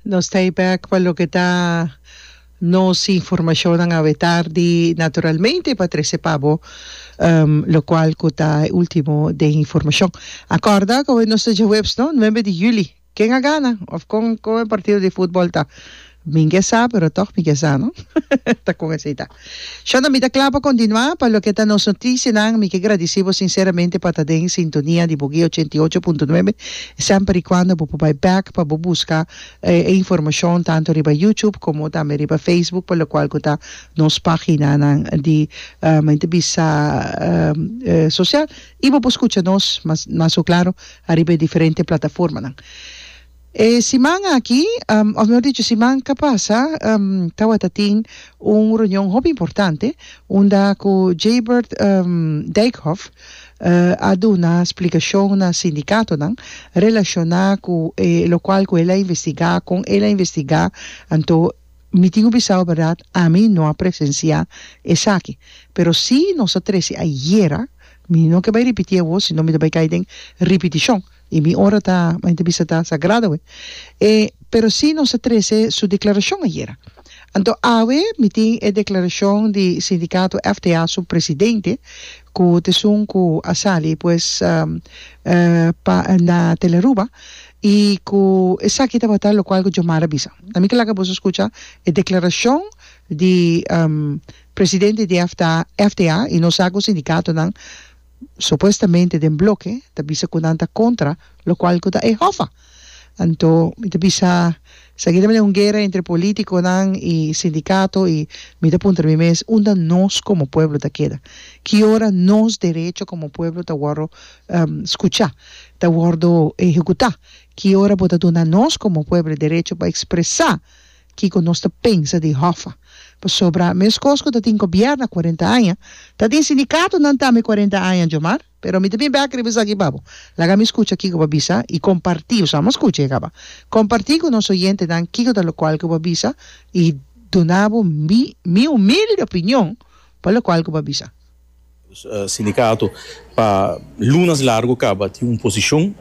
Nos ta e bek pa loke ta nos informashonnan awe tardi naturalmente pa trese pa bo lokual ku ta e último den informashon. A kòrda ku awe nos ta djaweps no, nuebe di juli. Ken a gana òf kon kon e partido di futbòl ta? Mi ke sa pero tog mi ke sa no ta con esey ta shonda mi ta cla pa continua pa loke ta nos noticianan mi ke gradici bo sinceramente pa ta den sintonia di Boguia ochenta i ocho punto nuebe semper y cuando bo por bay back pa bo busca e informacion tanto riba YouTube como tambe riba Facebook pa lo cual cu ta nos paginanan di men ta bisa social y bo por scucha nos mas mas ho claro ariba e diferente plataformanan. E siman aki, of mehor dicho, siman ka pasa, tawata tin un reunion hopi importante unda ku Jaybert Dijkhof a duna splikashon na sindikatonan relashoná ku e lokual ku el a investigá, kon el a investigá. Anto mi tin ku bisa ku bèrdat ami no a presensiá esaki, pero si nos a trese ayera, mi no ke bai ripití awor, sino mi ta bai kai den ripitishon. I mi ora ta un entrevista ta sagrado awe. E pero si nos a trece su declaracion ayera. Anto awe mi tin e declaracion di sindicato FTA su presidente cu ta esun cu a sali pues pa na Telearuba y cu esaki tabata locual cu Jomar a bisa. Na mi ta laga boso scucha e declaracion di presidente di FTA y nos sa cu sindicatonan supuestamente den bloke ta bisa cu nan ta contra lo cual cu ta e hofa anto mi ta bisa seguida mi den un guera entre politiconan y sindicato y mi ta puntra mi mes unda nos como pueblo ta keda ki ora nos derecho como pueblo ta wordo scucha ta wordo ehecuta ki ora bo ta duna nos como pueblo e derecho pa expresa Kiko nos ta pensa di Hoffa? Pasobra meskos ku ta tin gobièrna kuarenta aña, ta tin sindikatonan tambe kuarenta aña, Djomar. Pero mi ta bin bèk riba esaki, Babo. Laga mi skucha kiko bo a bisa i kompartí, osea amo a skucha i a kaba, kompartí ku nos oyentenan kiko ta lokual ku bo a bisa i duna bo mi mi humilde opinion pa lokual ku bo a bisa. Sindicato pa lunas largo caba tin un posicion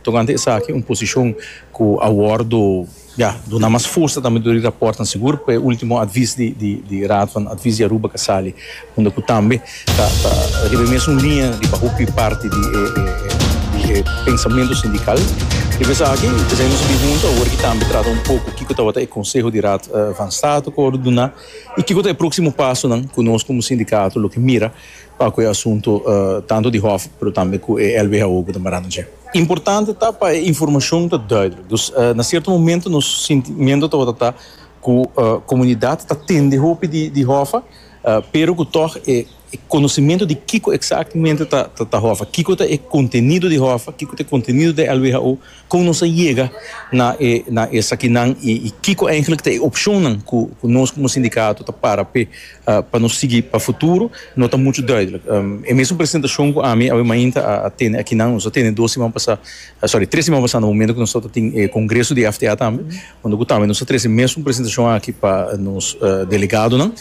tocante esaki, un posicion cu a wordo ya duna mas fuerza tambe dor di raportnan sigur pa e ultimo advies di Raad van Advies di Aruba ca sali unda cu tambe ta riba e mesun linea riba hopi parti di e pensamento sindical. Riba esaki esaki nos a bin hunta awor cu tambe trata un poco kico tabata e conseho di Raad van State cu a wordo duna. I kiko ta e próksimo pasonan ku nos komo sindikato lo ke mira pa ku e asunto tantu di hòf pero tambe ku e lwho ku ta marando dje? Importante ta pa e informashon ta duidelijk. Dus na sierto momento nos sintimentu tabata ta ku komunidat ta tende hopi di hòf pero ku tòg e. E konosementu di kiko eksaktemente ta ta hòfa, kiko ta e kontenido di hòfa, kiko ta e kontenido di LWHO, kon nos a yega na e na esakinan i i kiko eintlik ta e opshonnan ku ku nos komo sindikato ta para p'e pa nos sigui pa futuro no ta muchu duidelijk. E mesun presentashon ku ami awe mainta a a tene akinan, nos a tene dos siman pasá, sòri, tres siman pasá na momentu ku nos tabata tin e kongreso di FTA tambe, Unda ku tambe nos ta trese mesun presentashon aki pa nos delegadonan,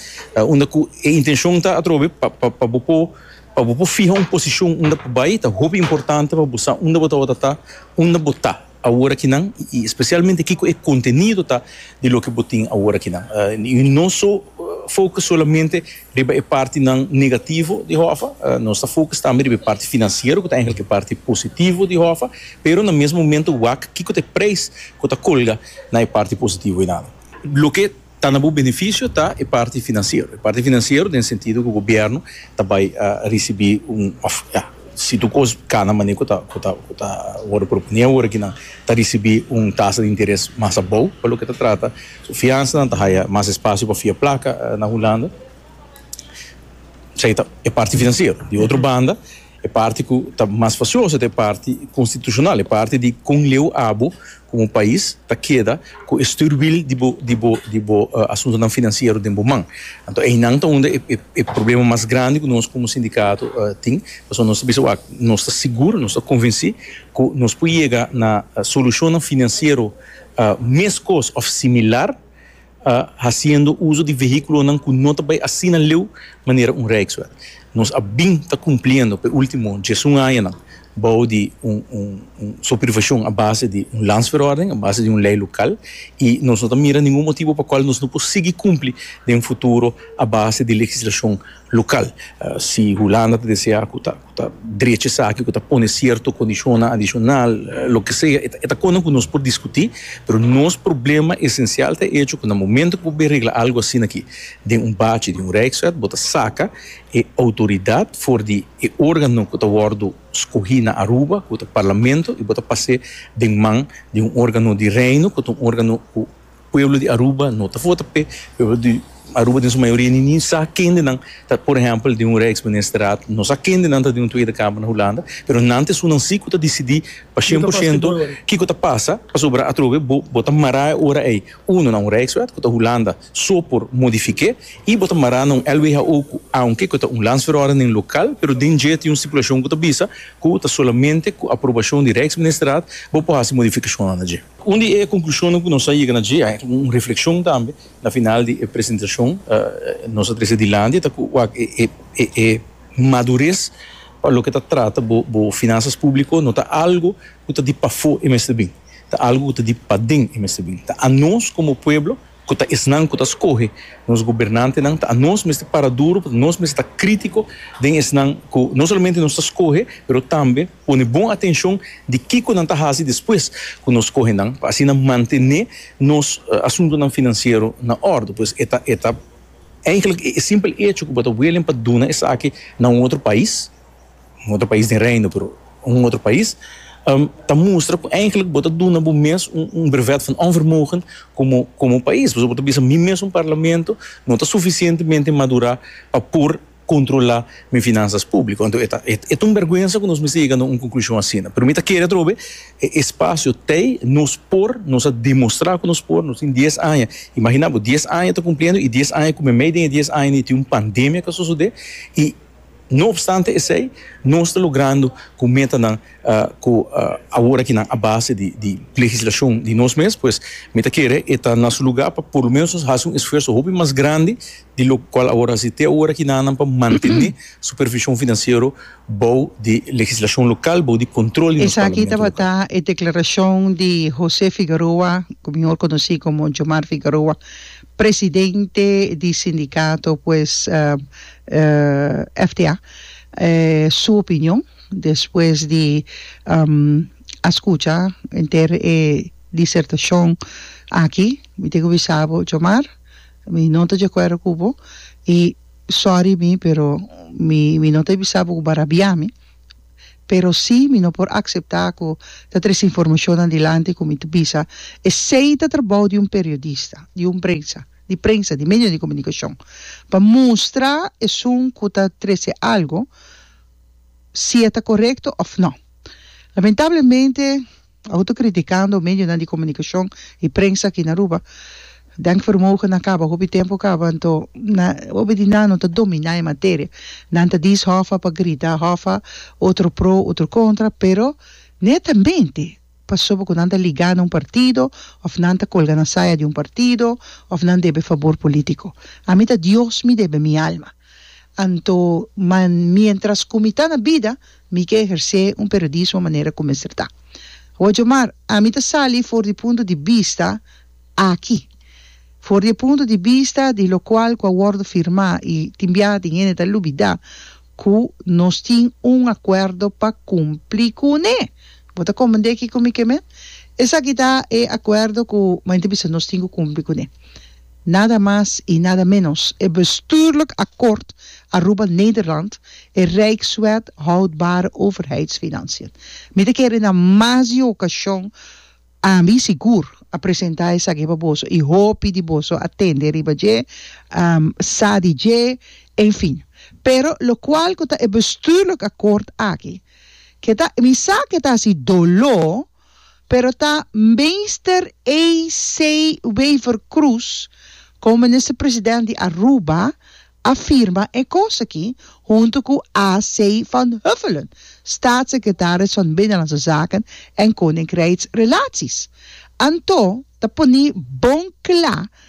unda ku e intenshon ta atrobe pa pa bo por pa bo por fiha un posishon unda bo bai, ta hopi importante pa bo sa unda bo tabata ta, unda bo ta awor akinan i spesialmente kiko e kontenido ta di loke bo tin awor akinan. I no so fokus solamente Riba e partinan negativo di Hoffa, nos ta fokus tambe riba e parti finansiero ku ta engelke e parti positivo di Hoffa, pero na mes momentu wak kiko ta e preis ku ta kolga na e parti positivo einan. Loke ta na bo benefisio ta e parti finansiero, e parti finansiero den sentido ku gobièrnu ta bai risibí un òf ya si tur kos kana manera ku ta ku ta ku ta wòrdu proponié awor aki nan ta risibí un tasa di interes mas abou pa loke ta trata Su fiansanan ta haya mas espasio pa fia plaka na Hulanda. Esei ta e parti financiero. Di otro banda, e parti cu ta mas facioso ta e parti constitucional, e parti di con leu abo como pais ta keda cu e stuurwiel di bo di bo di bo asuntonan financiero den bo man. Anto einan ta unda e e problema mas grandi cu nos como sindicato tin. Pasobra nos ta bisa wak nos ta sigur, nos ta convenci cu nos por yega na solucionnan financiero. meskos of similar hasiendo uso di vehiculonan cu no ta bay asina leu manera un Rijkswet. Nos a bin ta cumpliendo p'e ultimo diesun añanan bou di un supervision a base di un Landsverordening, a base di un ley local, y nos no ta mira ningun motibo pa cual nos no por sigui cumpli den futuro a base di legislacion local. Si Hulanda ta desea cu ta. ta drecha esaki ku ta pone sierto kondishonnan adishonal, loke sea, e ta kona ku nos por diskutí, pero nos problema esensial ta e echo ku na momentu ku bo bai regla algu asina aki den un bachi di un Rijkswet, bo ta saka e outoridat for di e órgano ku ta wòrdu skohí na Aruba, ku ta Parlamento, i bo ta pas'é den man di un órgano di Reino ku ta un órgano ku. Pueblo di Aruba no ta vota p'e. Pueblo di Aruba den su mayoria ninin sa kendenan ta por ehempel di un reeks ministerraad, no sa kendenan ta di un tweede kamer na Hulanda, pero nan ta esunnan si ku ta disidí pa shen por shento kiko ta pasa, pasobra atrobe bo bo ta mará e ora ei uno na un reekswet ku ta Hulanda so por modifik'é i bo ta mará na un lwho ku aunke ku ta un landsverordening lokal pero den dje tin un stipulashon ku ta bisa ku ta solamente ku aprobashon di reeksministerraad bo por hasi modifikashonnan na dje. Un di e konklushonnan ku nos a yega na dje a, un reflekshon tambe na final di e presentashon nos a trese dilanti, ta ku wak e madures pa loke ta trata bo finansas públiko no ta algu ku ta di pafó e mester bin, ta algu ku ta di paden e mester bin. Ta anos komo pueblo ku ta esnan ku ta skohe nos gobernantenan, ta anos mester para duru, ta anos mester ta krítiko den esnan ku no solamente nos ta skohe pero tambe. Pone bon atencion di kico nan ta haci despues cu nos coge nan pa asina mantene nos asuntonan financiero na orde. Pues e ta e ta eigenlijk e simpel hecho cu bo ta willing pa duna esaki na un otro pais, un otro pais den Reino pero un otro pais, ta mustra cu eigenlijk bo ta duna bo mes un brevet van onvermogen como como pais. Pasobra bo ta bisa mi mes un Parlamento no ta suficientemente madura pa por. controla mi finanzas publico. Anto e ta e ta un berguensa cu nos mester yega na un conclusion asina. Pero mi ta kere atrobe e espacio tey nos por, nos a demostra cu nos por, nos tin dies aña, imagina bo dies aña ta cumpliendo y dies aña cu meimei den e dies aña ni tin un pandemia cu a sosode y no obstante esey nos ta logrando cu metanan cu awor aki nan a base di di legislacion di nos mes pues mi ta kere e ta na su lugar pa por lo menos nos haci un esfuerzo hopi mas grandi di lokual awor hasi te awor aki nan pa mantené supervishon finansiero bou di legislashon lokal, bou di kontrol di nos Esaki tabata e deklarashon di José Figueroa, ku mihor konosí komo Jomar Figueroa, presidente di sindikato pues FTA, su opinion despues di a skucha henter e disertashon aki. Mi tin ku bisa bo Jomar. Mi no ta dje kuerdo ku bo i sòri mi pero mi mi no ta bisa bo ku bo a rabia mi pero si mi no por akseptá ku ta tres informashonnan dilanti ku mi ta bisa esei ta trabou di un periodista di un prensa di prensa di medio di komunikashon pa mustra esun ku ta trese algu si e ta korekto òf nò lamentablemente. Awor ta criticando medionan di comunicacion y prensa aki na Aruba. Denkvermogen a caba, hopi tempo a caba, anto na hopi di nan no ta domina e materia. Nan ta dies hofa pa grita hofa, otro pro, otro contra, pero netamente pasobra cu nan ta liga na un partido of nan ta colga na saya di un partido of nan debe favor politico. Ami ta Dios mi debe mi alma. Anto, ma mientras cu mi ta na bida, mi ke ehersé un periodismo manera cu mester ta. Oye, maar ami ta sali for di punto di bista aki, for di e punto di bista di locual cu a wordo firmá y tin biaha tin hende ta lubidá cu nos tin un acuerdo pa cumpli cune. Bo ta comprendé kico mi ke men? Esaki ta e acuerdo cu men ta bisa nos tin cu cumpli cune. Nada mas i nada menos, e bestuurlijk akkoord Aruba Nederland, e Rijkswet houdbare overheidsfinanciën. Mi ta kere na mas di e okashon, ami sigur, a presenta esaki pa boso i hopi di boso a tende riba dje, a sa di dje, en fin. Pero lokual ku ta e bestuurlijk akkoord aki? Ke ta, mi sa ke ta hasi doló. Pero ta Meester A.C. Wever Croes, como Minister President di Aruba, a firma e cos aki, hunto cu A.C. Van Huffelen, Staatssecretaris van Binnenlandse Zaken en Koninkrijksrelaties. Anto ta poni bon cla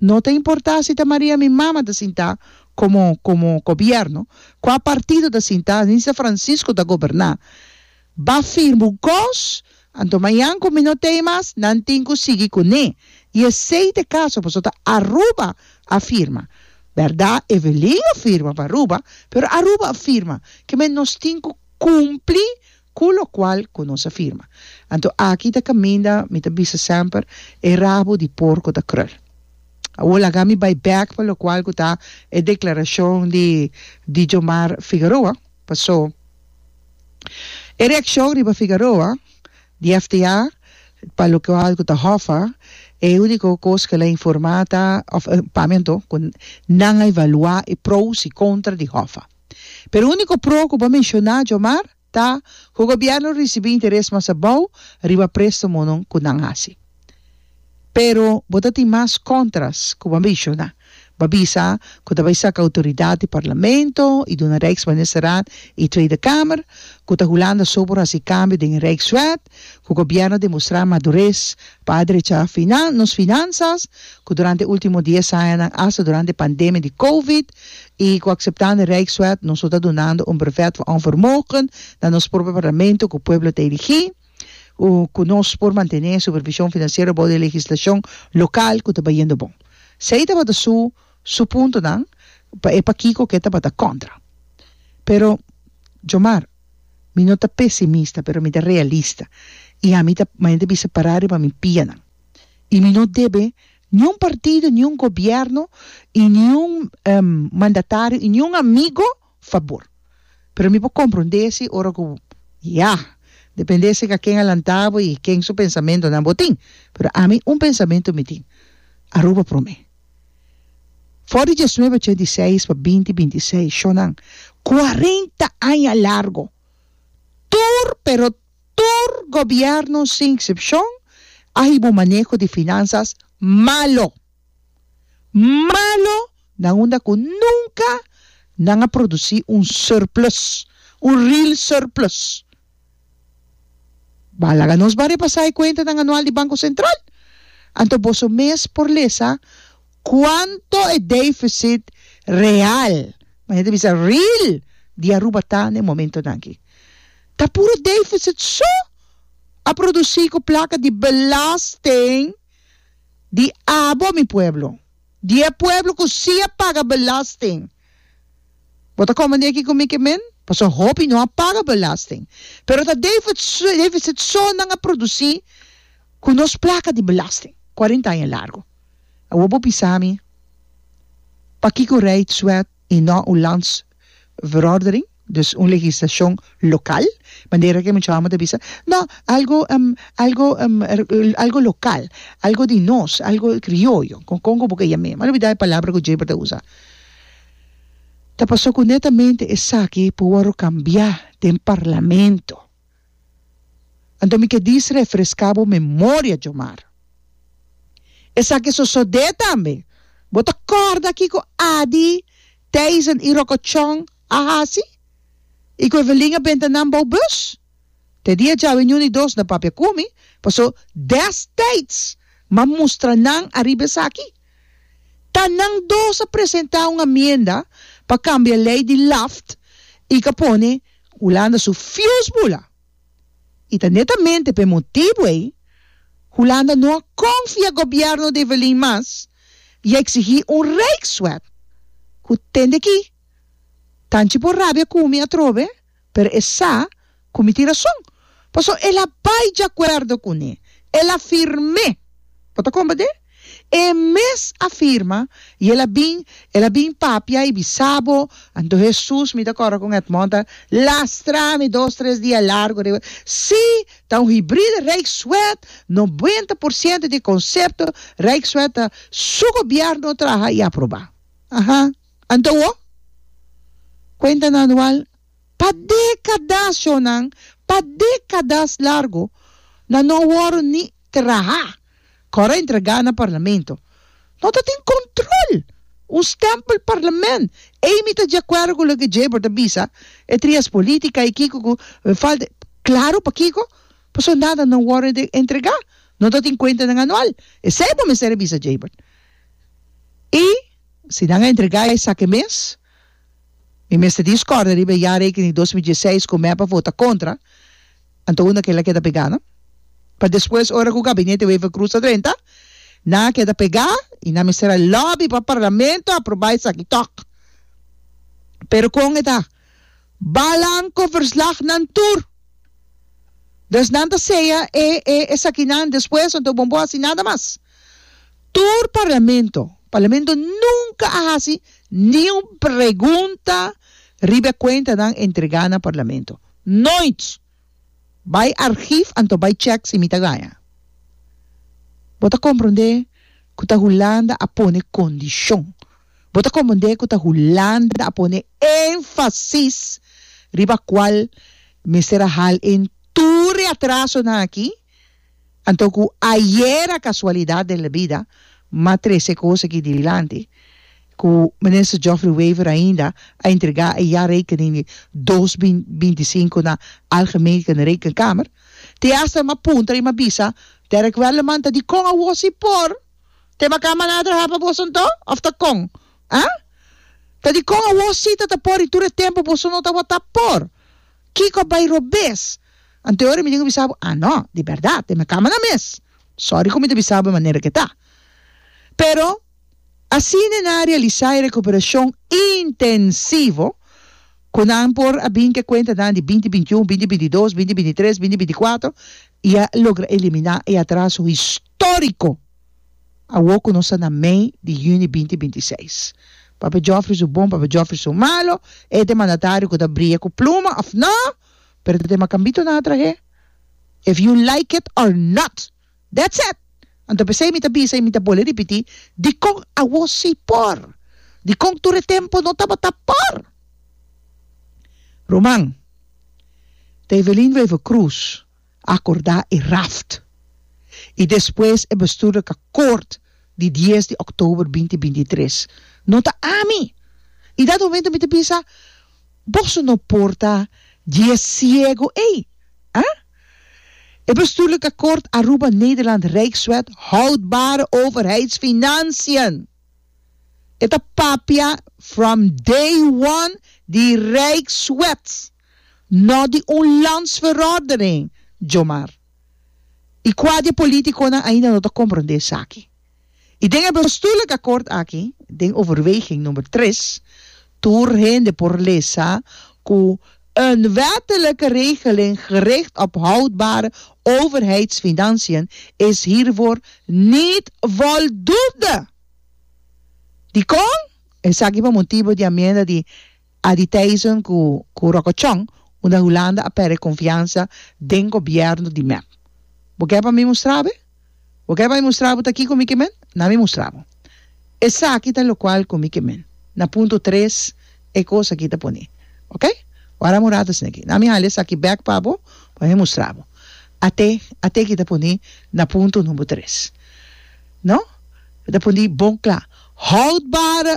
No ta importá si ta Maria mi mama ta sintá komo komo gobièrnu, kua partido ta sintá, ni si ta Francisco ta goberná. Ba firma un kos, anto mañan ku mi no ta ei mas, nan tin ku sigui kuné. I esei ta e kaso, pasobra Aruba a firma. Bèrda, Evelyn a firma pa Aruba, pero Aruba a firma. Ke men nos tin ku kumpli Cu locual cu nos a firma. Anto aki ta caminda, mi ta bisa semper, e rabo di porco ta crul. Awor laga mi bay bek pa locual cu ta e declaracion di Dijomar Figaroa, paso e reaccion riba Figaroa di FTA pa locual cu ta hofa, e unico cos cu el a informa ta, of pa mi anto, cu nan a evalua e pro's y contra di hofa. Pero e úniko pro ku bo menshoná, Djomar, ta ku gobièrnu risibí interes mas abou riba préstamonan ku nan hasi. Pero bo ta tin mas kòntras ku bo a menshoná. Bo a bisa ku ta bai saka outoridat di Parlamento i duna Rijksministerraad i Tweede Kamer, ku ta Hulanda so por hasi kambio den e Rijkswet, ku gobièrnu demostrá madures pa adrecha nos finansas, ku durante último dies añanan asta durante pandemia di covid i ku akseptando Rijkswet nos lo ta dunando un brevet van onvermogen na nos propio parlamento ku pueblo ta eligí, ku nos por mantené e supervishon finansiero bou den legislashon lokal ku ta bayendo bon. Esei tabata su su puntonan pa e pakiko ke tabata kontra. Pero, Djomar. Mi no ta pesimista, pero mi ta realista i ami ta mante bisa pará riba mi pianan. I mi no debe niun partido, niun gobièrnu i niun mandatario i niun amigo fabor. Pero mi por komprondé si ora ku ya, dependé si ken a lantá bo i ken su pensamentonan bo tin, pero ami un pensamentu mi tin, Aruba promé. For di diesnuebe ochenta i seis pa binti binti i seis, shonnan, kuarenta aña largu, tur, pero tur gobièrnunan sin eksepshon a hiba un maneho di finansas malu. Malu na unda ku nunka nan a produsí un surplus, un real surplus. Bá, laga nos ban repasá e kuentanan anual di Banko Sentral. Anto boso mes por lesa kuanto e défisit real, mas e ta bisa ril, di Aruba ta na e momentonan aki. Ta puro défisit so a produsí ku plaka di belasting di abo mi pueblo, di e pueblo ku sí a paga belasting. Bo ta komende aki ku mi ke men? Pasobra hopi no a paga belasting, pero ta defisit so nan a produsí ku nos plaka di belasting kuarenta aña largu. Awor bo bisa mi pakiko rijd swet i no un landsverorderin? Dus un legislashon lokal, manera ku e muchachos amo ta bisa, no, algo algo algo lokal, algo di nos, algo krioyo, kon kon ku bo ke yam'e. M'a olbida e palabra ku Jaber ta usa. Ta pasó ku netamente esaki por wòrdu kambiá den parlamento. Anto mi ke dies refreská bo memoria, Djomar. Esaki a sosodé tambe. Bo ta kòrda kiko Adi, Theisen i Rokochon a hasi? I ku Evelin a benta nan bou bùs? Te dia djawe Ñuni Dos na papia ku mi, pasó dèstijds m'a mustra nan ariba esaki. Ta nan dos a presentá un amienda pa kambia lei di Laft i ka pone Hulanda su fius bula i ta netamente p'e motibu ei Hulanda no a konfia gobièrnu di Evelyn mas i a eksigí un rijkswet ku tende aki tanchi por rabia ku mi atrobe pero e sa ku mi tin rason paso el a bai djakuerdo kuné el a firm'é bo ta komba de E mes a firma, y el a bin, el a bin papia y bisa bo, Anto Hesus, mi ta corro con Edmond, a lastra mi dos tres dia largo riba e, si, ta un hybride Rijkswet, noventa por ciento di e concepto Rijkswet ta su gobierno traha y aproba. Aha, anto wo? Cuenta nan anual, pa decadas yo nan, pa decadas largo, nan no wor ni traha. Kor a entregá na Parlamento. No ta tin control! Un stempel Parlament! Ey mi ta djakuerdo ku loke Jabor ta bisa, e trias politica y kiko ku e falta e. Claro pakiko? Paso nada no worde den entregá. No ta tin cuentanan anual. Esey bo mester a bisa Jabor. Y si nan a entregá esaki mes? Mi mester tin scorde riba e jaarrekening di dos mil dieseis cu mep a vota contra, anto unda kila keda pega no? Pa despues ora cu gabinete Wever Croes ta drenta, nan a keda pega y nan mester a lobby pa Parlamento aproba esaki tok. Pero con e ta? Balan cu verslagnan tur! Dus nan ta sea e e esakinan despues anto bon bo haci nada mas. Tur parlamento, parlamento nunka a hasi ni un pregunta riba e kuentanan entregá na parlamento. Noit! Bai argief anto bai chèk si mi ta gaña. Bo ta komprondé ku ta Hulanda a pone kondishon. Bo ta komprondé ku ta Hulanda a pone énfasis riba kual mester a hal en tur e atrasonan aki. Anto ku ayer a kasualidat den bida m'a trese kos aki dilanti, ku Minister Geoffrey Wever ainda a entregá e jaarrekening di dos bin binti sinku na Algemene Rekenkamer, te asta m'a puntra i m'a bisa Derrick Welleman ta dikon awor si por te makán maná trahá pa boso anto òf ta kon? A? Ta dikon awor si ta ta por i tur e tempu boso no tabata por? Kiko a bai robes? Ante ora mi tin a bisa bo, ah no, di berdad, den mi camera mes. Sorry cu mi ta bisa bo e manera ke ta. Pero, asina nan a realisa e recuperacion intensivo cu nan por a bin cu e cuentanan di binti bintiun, binti bintidos, binti bintitres, binti binticuatro y a logra elimina e atraso historico awo cu nos ta na mei di juni binti bintiseis. Papá Joffrey su bon, papá Joffrey su malo, e ta e mandatario cu ta bria cu pluma of no? pero te tema cambito nan a trahe if you like it or not that's it anto p'esey mi ta bisa y mi ta bole ripiti dicon awo si por dicon tur e tempo no tabata por Roman ta Evelyn Wever-Croes. akorda e raft i despues e bestuurlijk akkoord di dies di òktober binti binti tres. No ta ami! I dat momento mi ta bisa, Boso no por ta dje siego ei! A? E bestuurlijk akkoord Aruba-Nederland Rijkswet Houdbare Overheidsfinanciën! E ta papia from day one di Rijkswet! No di un landsverordening, djomar. I kua di e politiconan ainda no ta comprende esaki? I den e bestuurlijk akkoord aki, den overweging number tres, tur hende por lesa cu een wettelijke regeling gericht op houdbare overheidsfinanciën is hiervoor niet voldoende. Dicon? Esaki pa motibo di amienda di. Adi Thijssen ku ku rokochon unda Hulanda a pèrdè konfiansa den gobièrnu di mep. Bo ke pa mi mustra bo? Bo ke pa mi mustra bo ta kiko mi ke men? Na mi mustra bo. Esaki ta lokual ku mi ke men. Na punto tres e kos aki ta pone. Ok, wara un rato esaki. Na mi hala esaki bèk pa bo pa mi mustra bo. Ate ate ki ta pone na punto number tres. No? Mi ta pone bon kla, Houdbare!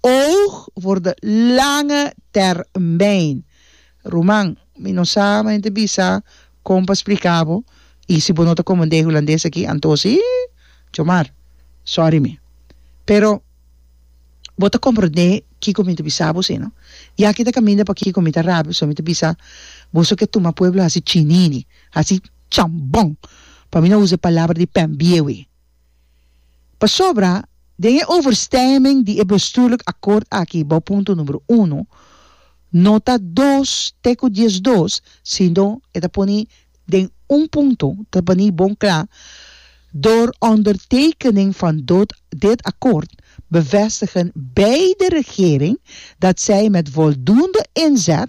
Oog for de lange termijn. Ruman, mi no sa man te bisa kon pa splika bo i si bo no ta komendé hulandes aki anto si, chomar, sòri mi. Pero bo ta komprondé kiko mi ta bisa bo si no? I aki ta kaminda pa kiko mi ta rabia, so mi ta bisa boso ke tuma pueblo hasi chinini, hasi chambon, pa mi no usa e palabra di pènbiewi. Pasobra, den e overstemming di e bestuurlijk akkoord aki bou punto numero uno, no ta dos te ku dies dos, sino e ta poni den un punto ta bani bon kla, Door ondertekening van dot dit akkoord bevestigen beide regering dat zij met voldoende inzet,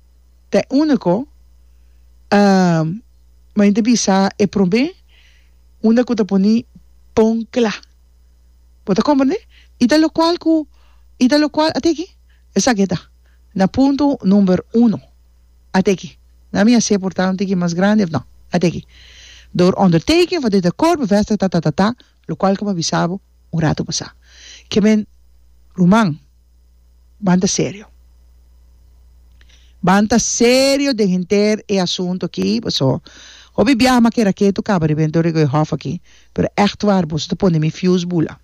te unico main te bisa e prome unda cu ta poni pon cla bo ta comprende y ta locual cu y ta locual ate aki esaki ta na punto number uno ate aki na mi a se porta un tiki mas grandi of no ate aki door onderteking van dit akkoord bevestigd tatatata. Locual como a bisa bo un rato pasá, ke men ruman ban ta serio. Ban ta serio den henter e asunto aki, paso hopi biaha m'a kera ketu caba riba den Torre Goehof aki, pero echt waar boso ta pone mi fieus bula.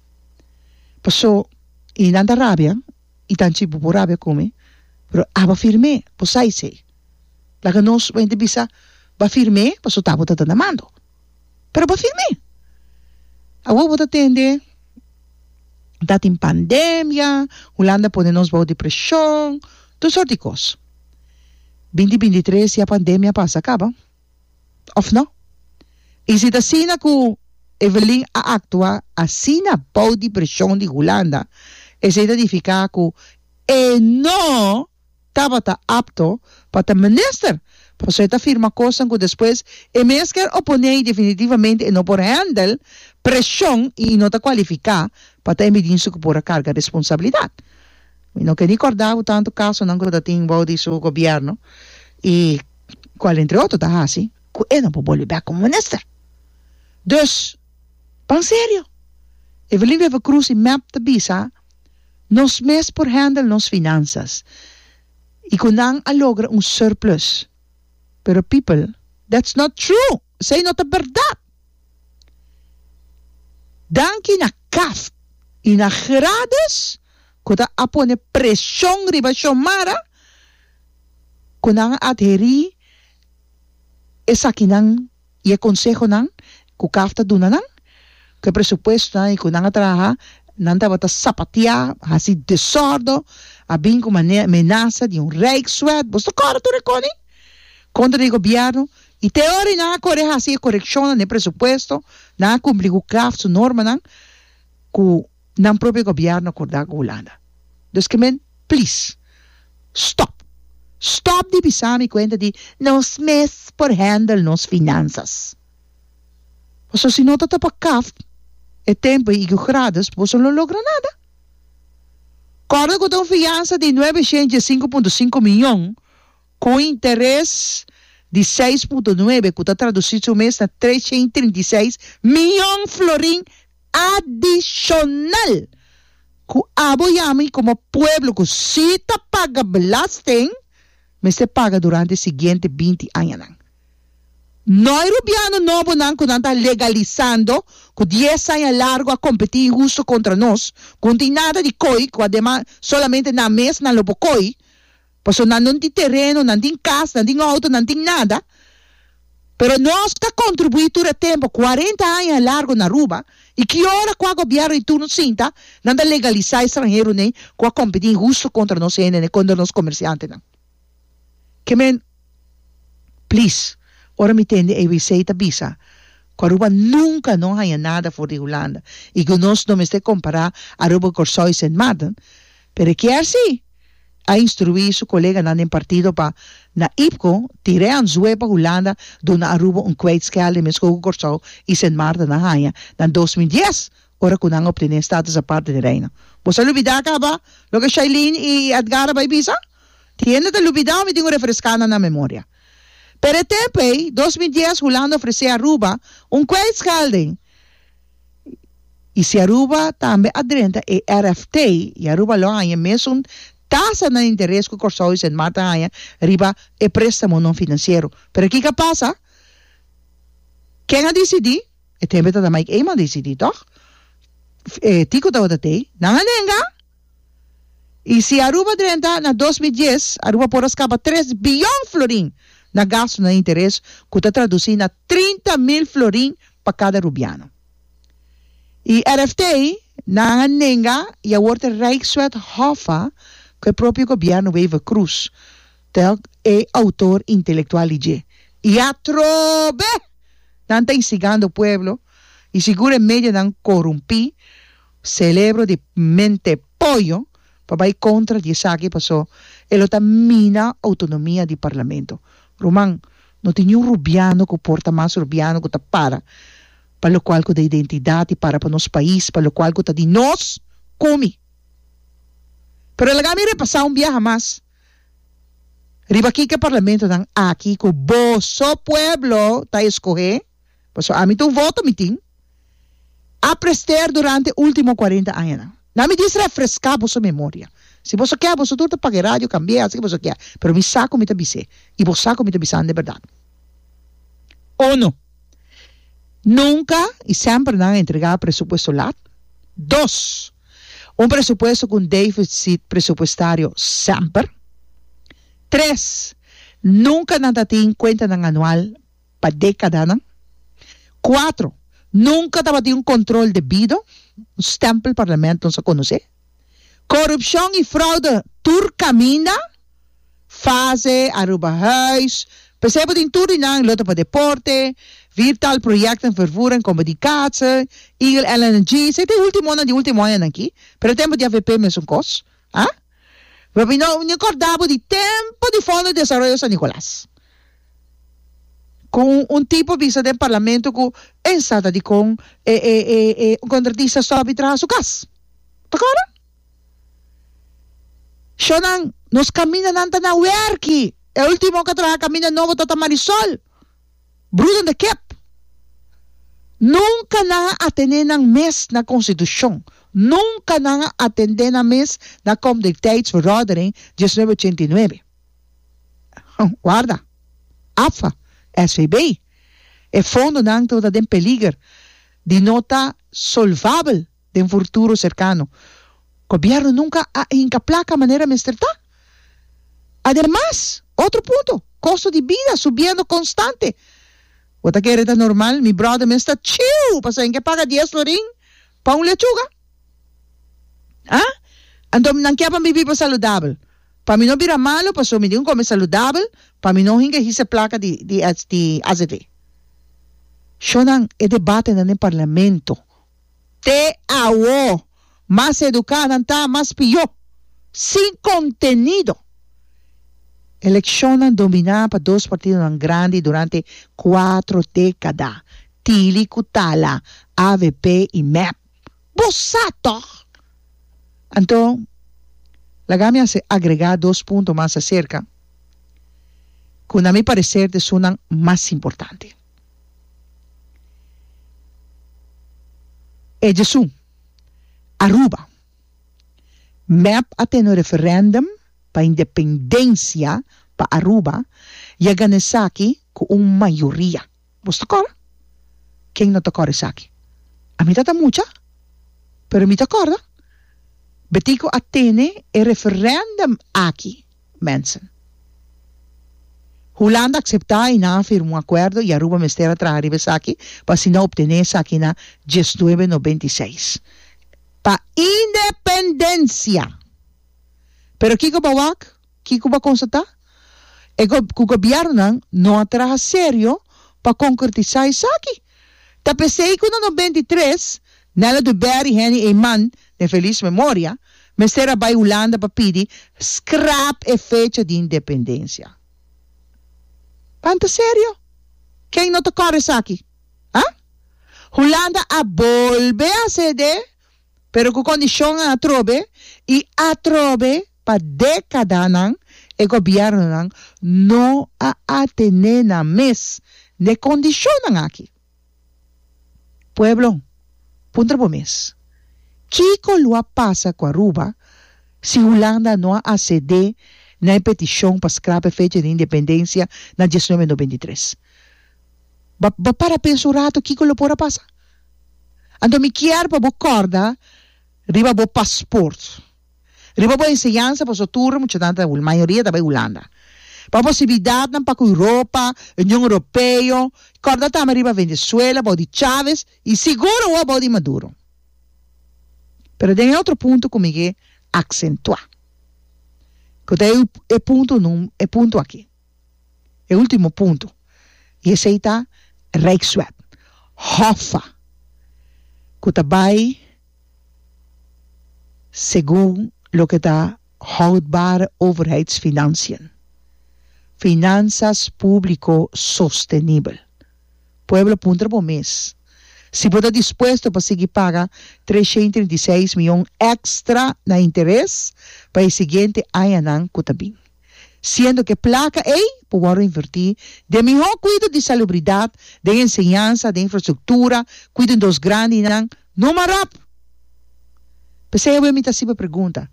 Paso y nan ta rabia y tan chi bo por rabia cu mi, pero aba firm'é, bo sa esey. Laga nos, bo a henter bisa, ba firm'é, paso ta bo ta ta na mando. Pero bo firme. Awor bo ta tende ta tin pandemia, Hulanda pone nos bou di preshon, tur sort di kos. Binti binti tres ya pandemia a pasa kaba? Òf nò? I si ta asina ku Evelyn a aktua asina bou di preshon di Hulanda, esei ta nifiká ku e no tabata apto pa ta minister, paso e ta firma cosnan cu despues e mes ker oponé y definitivamente e no por handel presion y e no ta cualifica pa ta e midinster cu por a carga responsabilidad. Mi no ker ni corda cu tanto casonan cu ta tin bou di su gobierno y cual entre otro ta haci cu e no por bolbe bek como minister. Dus, panserio, Evelyn Wever-Croes y mep ta bisa. Nos mes por handle nos finansas y cu nan a logra un surplus. Pero people, that's not true! Esey no ta berdad! Danki na caf y na Gradus cu ta a pone presion riba Xiomara cu nan a adheri esakinan. I e konsehonan ku kaf ta duna nan, ku e presupuestonan i ku nan a traha, nan tabata sapatia, hasi desórdo, a bin ku mane amenasa di un rijkswet, bos ta kòrda tur e koni? kontra di e gobièrnu, i te ora nan a kore hasi e korekshonnan na e presupuesto, nan a kumpli ku kaf su normanan, ku. Nan propio gobièrnu kordá ku Hulanda. Dus ke men, plis, stòp! Stòp di bisa mi kuenta di nos mes por hèndel nos finansas. Pasobra si no ta ta pa Kaft, e tempu i Igor Grades boso lo logra nada. Kòrda ku ta un fiansa di nuebeshent diesinku punto sinku miyon ku un interes di seis punto nuebe ku ta tradusí su mes na treshent i trinta i seis miyon florin adishonal ku abo i ami komo pueblo ku si ta paga belasting mester paga durante e siguiente binti añanan. No e rubiano nobonan ku nan ta legalisando ku dies aña largu a kompetí inhustu kontra nos, ku no tin nada di koi ku ademas solamente nan mes nan lo por koi, Paso nan no tin tereno, nan tin cas, nan tin auto, nan tin nada, pero nos ta contribui tur e tempo, cuarenta aña e largo na Aruba, y ki ora cu a gobierno di turno sinta, nan ta legalisa e stranheronen cu a competi inhusto contra nos hende, contra nos comerciantenan. Kemen, please, ora mi tende ABC ta bisa cu Aruba nunca no haya nada for di Hulanda y cu nos no mester compara Aruba cu Corsou y Sint Maarten, Pero e kier si, a instruí su koleganan den partido pa, na Ipco, tir'é anzué pa Hulanda dor nan a ruba un kwijtschel den meskor ku Kòrsou i Sint Maarten a haña na dos mil dies, ora ku nan a obtené status apart den e Reino. Bo sa lubidá kaba loke Shailene i Edgar a bai bisa? Tin hende ta lubidá òf mi tin ku refreská nan na memoria. Pero e tempu ei, dos mil dies, Hulanda ofresé Aruba un kwijtschel den. y si Aruba tambe a drenta e RFT y Aruba lo haña mesun tasa na interes cu Corsou y Sint Maart ta haña riba e prestamo non financiero. Pero kico a pasa? Ken a dicidi? E tempio ta ta Mike Eman a dicidi, toch? Tico tabata tey. Nan a nenga? Y si Aruba drenta na dos mil dies, Aruba por a scapa tres billón florin na gasto na interes, cu ta traduci na trinta mil florin pa cada Rubiano. Y rfta nan a nenga y awor ta Rijkswet Hoffa cu e propio Gobierno Wever-Croes ta e autor intelectual di dje. Y atrobe! Nan ta instigando pueblo y sigur e medianan corumpi. Celebro di mente poyo pa bai contra di esaki paso e lo ta mina autonomia di Parlamento. Ruman, no tin niun Rubiano cu por ta mas Rubiano cu ta para pa locual cu ta identidad y para pa nos pais pa locual cu ta di nos cumi. Pero laga mi repasa un biaha mas riba kico e Parlamentonan aki cu boso pueblo ta escoge, Paso ami ta un voto mi tin a prester durante ultimo cuarenta añanan. Na mi dies refresca boso memoria. Si boso kier boso tur ta paga e radio, cambia, haci loke boso kier. Pero mi sa cu mi ta bis'e y bo sa cu mi ta bisan de berdad. Uno, nunca y semper nan a entrega presupuesto lat. Dos, un presupuesto cu un deficit presupuestario semper. Tres, nunca nan ta tin cuentanan anual. pa dékadanan. Kuatro, nunka tabatin un kontrol debido, un stèmpel Parlamento nos a konosé. Korupshon i fraude tur kaminda, fase Aruba Huis, p'esei bo tin tur di nan, lote pa deporte, vir tal proyèkten vervoer en Kombe di Kaatse, Eagle LNG, esei ta e últimonan di último añanan akí, pero e tempo di avp mesun kos, a. Mi kòrdá bo di tempo di Fondo di Desaroyo San Nicolas. Cu un tipo bisa den parlamento cu en sa ta dicon e e e e un contratista stop y traha su cas. Ta cora? Sho nan nos caminda nan ta na werki. E ultimo ca traha caminda nobo ta ta Marisol, brudan de kep. Nunca nan a atende nan mes na constitucion. Nunca nan a atende nan mes na Kom Dikteits Verordening diecinuebe ochenta y nuebe. Warda, AFA, SVB, e fondonan lo ta den peliger di no ta solvabel den furturo serkano. Gobièrnu nunka a hinka plaka manera mester ta. Ademas, otro punto, kosto di bida subiendo konstante. Bo ta kere ta normal mi bròder mes ta chiu pa sabi ke paga dies florin pa un lechuga? Aa? Anto nan ke pa bibi pa saludabel? Pa mi no bira malo paso mi di un come saludabel pa mi no hinga hise placa di di di azv. Shonan e debate nan den parlamento. Te awo mas educa nan ta mas pio. Sin contenido. Eleccionnan domina pa dos partidonan grandi durante cuatro decada, Tili cu Tala, avp y mep. Bo sa tòg? Anto, laga mi hasi agregá dos punto mas aserka ku na mi pareser ta esun nan mas importante. Ejesun, Aruba, mep a tene un referèndum pa independensia pa Aruba i a gana esaki ku un mayoria. Bo sta kòrda? Ken no ta kòrda esaki? Ami ta ta mucha, pero mi ta kòrda. Betico a tene e referendum aki, mensen. Hulanda a akseptá i nan a firma un akuerdo i Aruba mester a traha riba esaki pa asina a optené esaki na diesnuebe nobenta i seis pa independensia. Pero kiko bo wak? Kiko bo a konstatá? E gob ku gobièrnunan no a traha serio pa konkretisá esaki. Ta p'esei ku na no benta i tres, Nella du Ber i Henny Eyman, den felis memoria, mester a bai Hulanda pa pidi skrap e fecha di independensia. Pan ta serio? Ken no ta kòrda esaki? Ha? Hulanda a bolbe a sede, pero ku kondishonnan atrobe i atrobe. Pa dékadanan e gobièrnunan no a atené nan mes n'e kondishonnan aki. Pueblo, puntra bo mes, kiko lo a pasa ku Aruba si Hulanda no a asedé na e petishon pa skrap'e fecha di independensia na dies nuebe nobenta i tres? Bo a para pensa un ratu kiko lo por a pasa? Anto mi kier pa bo kòrda riba bo pasport. Riba bo enseñansa, pasobra tur muchanan ta, mayoria ta bai Hulanda. Pa posibilidatnan pa ku Europa, Union Europeo, kòrda tambe riba Venezuela, bou di Chávez i sigur awor bou di Maduro. Pero den e otro punto ku mi ke aksentuá, ku ta e punto num, e punto akí. E ultimo punto y esey ta Rijkswet, Hoffa, cu ta bay segun loke ta houdbare overheidsfinanciën, Finanzas publico sostenibel. Pueblo puntra bo mes si bo ta dispuesto pa sigui paga trescientos treinta y seis miyon extra na interes pa e siguiente añanan cu ta bin. siendo ku e plaka ei por wòrdu invertí den mihó kuido di salubridat, den enseñansa, den infrastruktura, ku den dos grandinan no marap. P'esei awe mi ta sibi pregunta,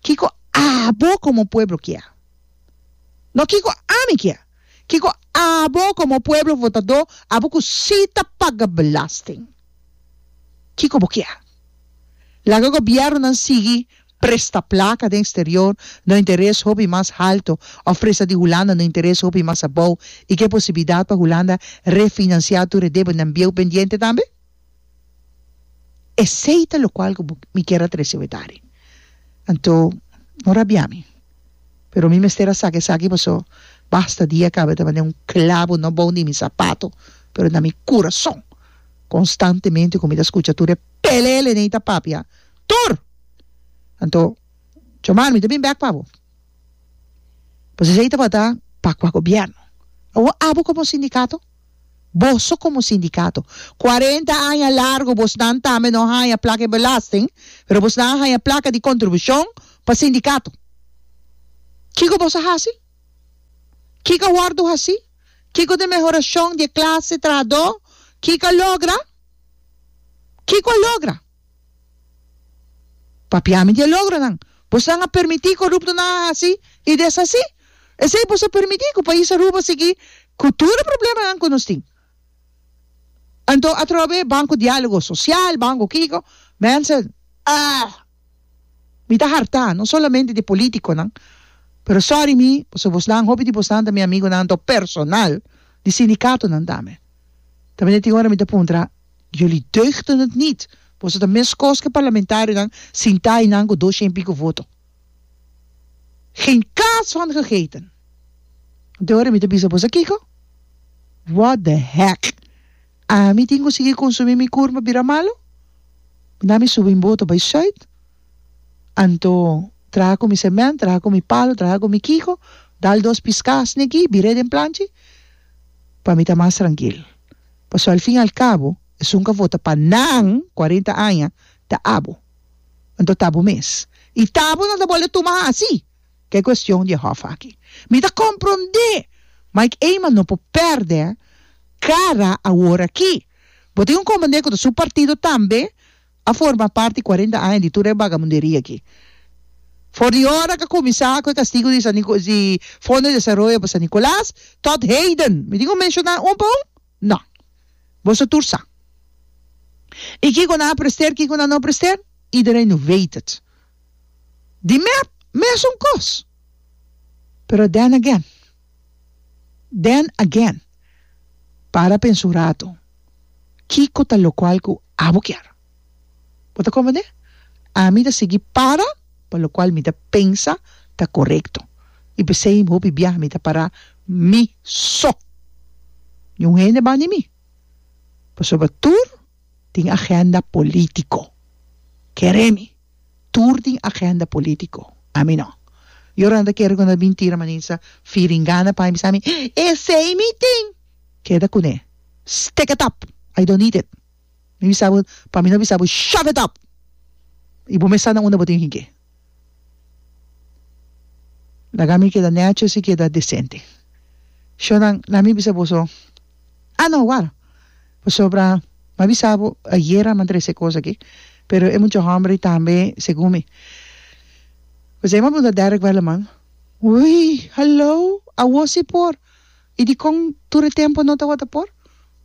Kiko abo komo pueblo kia? No kiko ami kia, kiko abo komo pueblo votadó, abo ku sí ta paga belasting, kiko bo kia? Laga gobièrnunan sigui. presta plaka den sterior no interes hopi mas halto of presta di Hulanda no interes hopi mas abou i ke posibilidat pa Hulanda refinansia tur e debenan bieu pendiente tambe? Esei ta lokual ku mi kier a trese wetari. Anto, no rabia mi, pero mi mester a saka esaki paso basta dia kabe ta mane un klabo no bou di mi sapato pero na mi kurason konstantemente ku mi ta skucha tur e pelele nei ta papia Tur! Anto, Chomar, mi ta bin bek pa bo. Pues esei tabata pa kua gobierno? Awo abo komo sindikato? Boso komo sindikato. Cuarenta aña largo bosnan tambe no haña plaka di belasting, pero bosnan a haña plaka di contribucion pa sindikato. Kiko boso a hasi? Kiko a wordu hasi? Kiko ta e mehoracion di e clase trahador? Kiko a logra? Kiko a logra? Papiami di e logronan bosan a permití koruptonan a hasi i deshasí. Esei boso a permití ku pais Aruba a sigui ku tur e problemanan ku nos tin. Anto atrobe Banko Diálogo Sosial, banko kiko, mense ah! Mi ta hartá, no solamente di polítikonan, pero sòri mi, pasobra bosnan, hopi di bosnan ta mi amigunan, anto personal di sindikatonan tambe. Ta mester tin ora mi ta puntra. Jullie deugden het niet. Boso ta mes kos ke parlamentarionan sintá einan ku dos shen piko voto. Geen kaas van gegeten. Te ora mi ta bisa boso kiko? What the heck? Ami tin ku sigui konsumí mi kur pa bira malu? Mi na mi subi mi boto bai Zuid. Anto traha ku mi semènt, traha ku mi palu, traha ku mi kiko, dal dos piská asni aki, bir'é den planchi pa mi ta mas trankil. Pasobra al fin al cabo, esun cu a vota pa nan cuarenta aña ta abo. Anto ta bo mes. Y ta bo nan ta bolbe tuma haci. Ta e cuestion di e hof aki. Mi ta compronde Mike Eman no por perde cara aworaki. Bo tin un comandé cu ta su partido tambe. a forma parti cuarenta aña di tur e vagabunderia aki. For di ora k'a cuminsa cu e castigo di San Nico di Fondo di Desaroyo pa San Nicolas tot heden. Mi tin cu menciona un pa un? No. Boso tur sa. Y kico nan a prester, kico nan no a prester? Iedereen nu weet het. Di mer, mesun cos. Pero then again, Then again, para pensa un rato, kiko ta lokual ku abo kier? Bo ta komprendé? Ami ta sigui para pa lokual mi ta pensa ta korekto. I p'esei hopi biaha mi ta para mi so. Niun hende ban di mi. Pasobra tur tin agenda polítiko. Kere mi. Tur tin agenda politico. Ami no. Yo renta kere cu no e mintira maninsa firingana pa mi bisa mi esey mi tin. Keda cune. Stick it up. I don't need it. Mi bisa bo pa mi no bisa bo shove it up. Y bo mester na unda bo tin higi. Laga mi keda necho si keda decente. Shownan laat mi bisa boso Ah no awor, pasobra m'a bisa bo ayer a mantrese e kos aki, pero e mucha hòmber tambe segun mi. Pasobra m'a punta Derek Welleman, Ui, hallo, awor si por? I dikon tur e tempu no tawata por?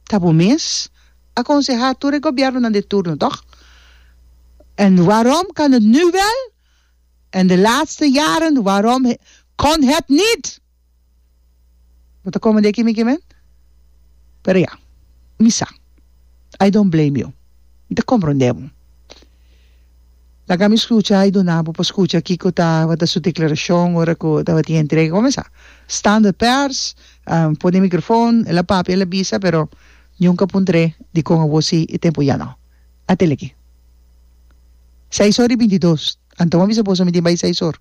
Ta bo mes a konsehá tur e gobièrnunan di turno, tòg? En waarom kan het nu wel en de laatste jaren, waarom kon het niet? Bo ta kome di aki mi kimen? Pero ya, mi sa. I don't blame you. Mi ta komprondé bo. Laga mi skucha i duna bo pa skucha kiko tabata su deklarashon ora ku tabatin entrega. Bo mesa, standaard pèrs, pone e mikrofon, el a papia, el a bisa, pero nunka por ntr'é di kon abo sí i tempu ya no. Atiliki. Seis or i binti dos. Anto mi a bisa boso mi tin bai seis or?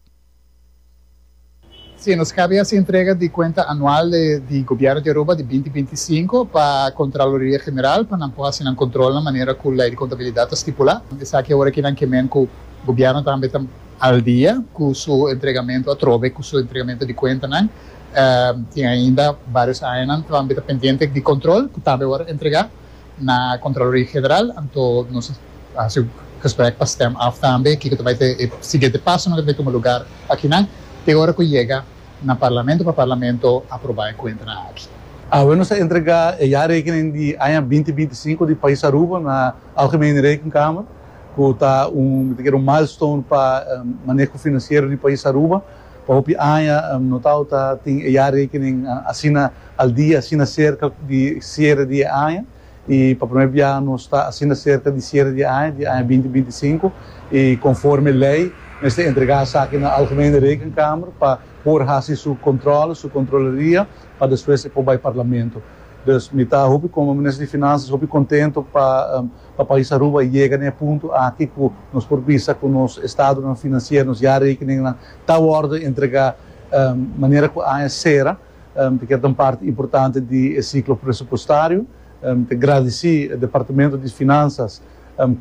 Si, nos kaba yase entrega di kuenta anual di Gobièrnu di Aruba di binti binti i sinku pa Kontraloria General pa nan por hasi nan kontrolnan manera ku Lei di Kontabilidat ta stipulá. Esaki awor aki nan ke men ku Gobièrnu tambe ta al dia ku su entregamentu atrobe ku su entregamentu di kuentanan. Tin ainda barios añanan tambe ta pendiente di kontrol ku tambe awor a entregá. Na Contraloria General anto nos a hasi un gesprek pa stem af tambe kiko ta bay ta e siguiente pasonan ku ta bay tuma lugar akinan te ora ku yega na Parlamento pa Parlamento aproba e kuentanan aki. Awe nos a entrega e jaarrekening di aña binti binti i sinku di pais Aruba na Algemene Rekenkamer ku ta un mi ta kere un milestone pa maneho finansiero di pais Aruba. Pa hopi aña no tawta tin e jaarrekening asina al dia, asina serka di siere di e aña. I pa primer bia nos ta asina serka di siere di e aña, di aña binti binti sinku. I konforme lei mester entregá esaki na Algemene Rekenkamer pa por hasi su kontrole, su kontroleria, pa despues e por bai Parlamento. Dus mi ta hopi, komo Minister di Finanzas, hopi kontento pa Pa pais Aruba a yega na e punto aki cu nos por bisa cu nos estadonan financier, nos jaarrekeningnan ta worde entrega manera cu aña cera, ta kier ta un parti importante di e ciclo presupuestario. Ta gradici Departamento di Finanzas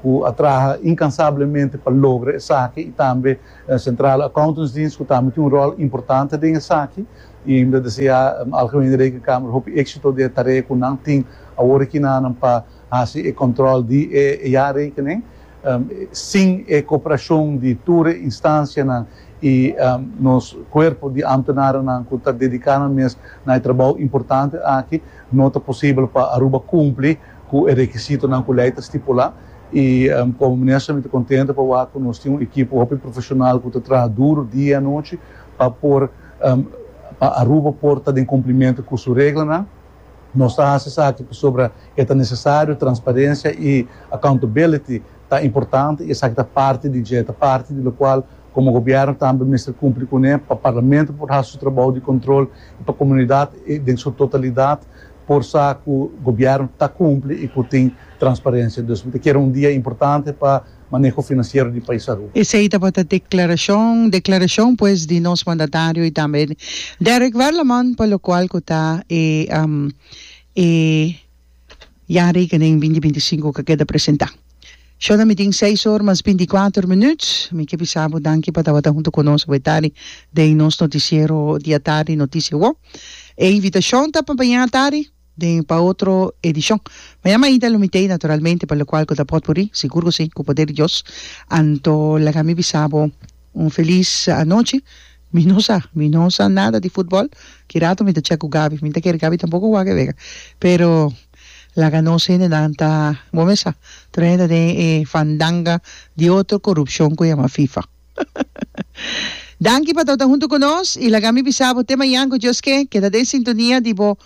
cu a traha incansablemente pa logra esaki y tambe Centrale Accountantsdienst cu tambe tin un rol importante den esaki. Y mi ta desea Algemene Rekenkamer hopi exito den e tarea cu nan tin awor aki na nan pa hasi e control di e jaarrekening sin e cooperacion di tur e instancianan y nos cuerpo di ambtenarennan cu ta dedica nan mes na e trabao importante aki, no ta posibel pa Aruba cumpli cu e requisitonan cu ley ta stipula y como Minister mi ta contento pa wak cu nos tin un ekipo hopi profesional cu ta traha duro dia y anochi pa por pa Aruba por ta den cumplimento cu su reglanan. Nos ta haci esaki pasobra e ta necesario, transparencia y accountability ta importante y esaki ta parti di dje, ta parti di locual como gobierno tambe mester cumpli cu ne pa Parlamento por haci su trabou di control y pa comunidad den su totalidad por sa cu gobierno ta cumpli y cu tin transparencia. Dus mi ta kere un dia importante pa. maneho finansiero di Paisarú. Esei tabata declaracion, declaracion pues di nos mandatario y tambe Derrick Werleman pa locual cu ta e e ya rekening binti binti sinku cu a keda presenta. Shona mi tin seis or mas binti kuater minuut. Mi ke bisa bo danki pa tabata hunto cu nos awe tardi den nos noticiero diatardi Noticia Wou. E invitacion ta pa mañana tardi. den pa otro edishon. Ma ya mainta lo mit'ei naturalmente pa lokual ku ta pòt muri, sigur ku si, ku poder di Dios. Anto laga mi bisa bo un felis anochi. Mi no sa, mi no sa nada di futbòl, ki rato mi ta chèk ku Gabi, mi no ta kere Gabi tampoko wak e wega, pero laga nos hendenan ta, bo mes sa, tur hende ta den e fandanga di otro korupshon ku yama fifa. Danki pa tabata huntu ku nos i laga mi bisa bo te mañan ku Dios ke, keda den sintonia di bo